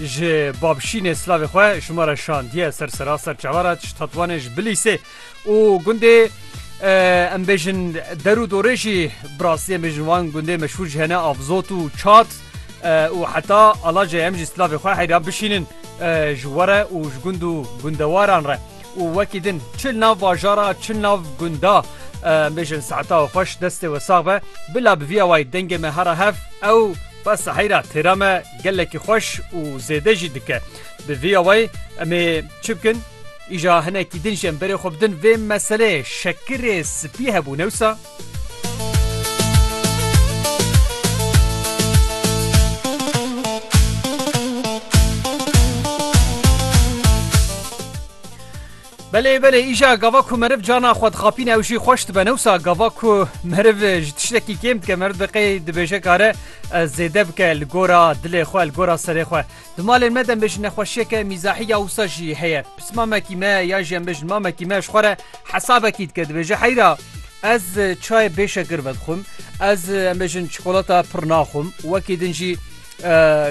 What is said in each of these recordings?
Ji bavşînê silavê xwe şima re şandiye ser seraser çewara çi Tatwanê ji Bilîsê û gundê em bêjin der û dorê jî bi rastî em bêjin wan gundê meşhûr jî hene Avzot û Çat û heta Alajê em jî silavê xwe heyra bişînin ji we re û ji gund û gundewaran re û wekî din çi li nav bajara çi li nav gunda em bêjin saeta we xweş destê we sax be bila bi vî awayî dengê me hera hev ew bes e heyra têra me Gelekî xweş û zêde jî dike. Bi vî awayî em ê çi bikin? Îja hinekî din jî em berê xwe bidin vê meseleyê. Şekirê spî hebû ne wisa? Belê belê îja gava ku meriv cana xwe dixapîne ew jî xweş dibe newsa gava ku meriv ji tiştekî kêm dike meriv diqê dibêje kare ez zêde bike li gora dilê xwe li gora serê xwe di malên me demê ji nexweşiyeke mîzahî ya wisa jî heye pis mamekî me ya jî em bêjin mamekî me ji xwe re hesabekî dike dibêje heyra ez çayê bêşekir vedixwim ez em bêjin çikolata pir naxwim wekî din jî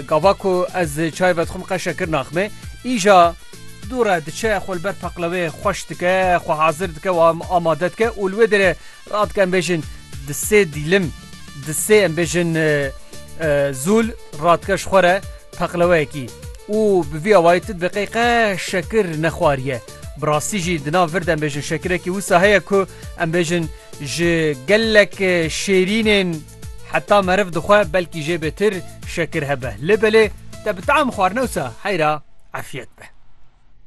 Gava ku ez çayê vedixwim qe şekir naxime. Îja dûre diçe xwe li ber peqleweyê xweş dike, xwe hazir dike û amade dike û li wê derê radike em bêjin di sê dîlim, di sê em bêjin zûl radike ji xwe re peqleweyekî û bi vî awayî tu dibê qey qe şekir nexwariye. Bi rastî jî di nav vir de em bêjin şekirekî wisa heye ku em bêjin ji gelek şêrînên Heta meriv dixwe belkî jê bêtir şekir hebe lê belê te bi team xwarine wisa heyra efiyet be.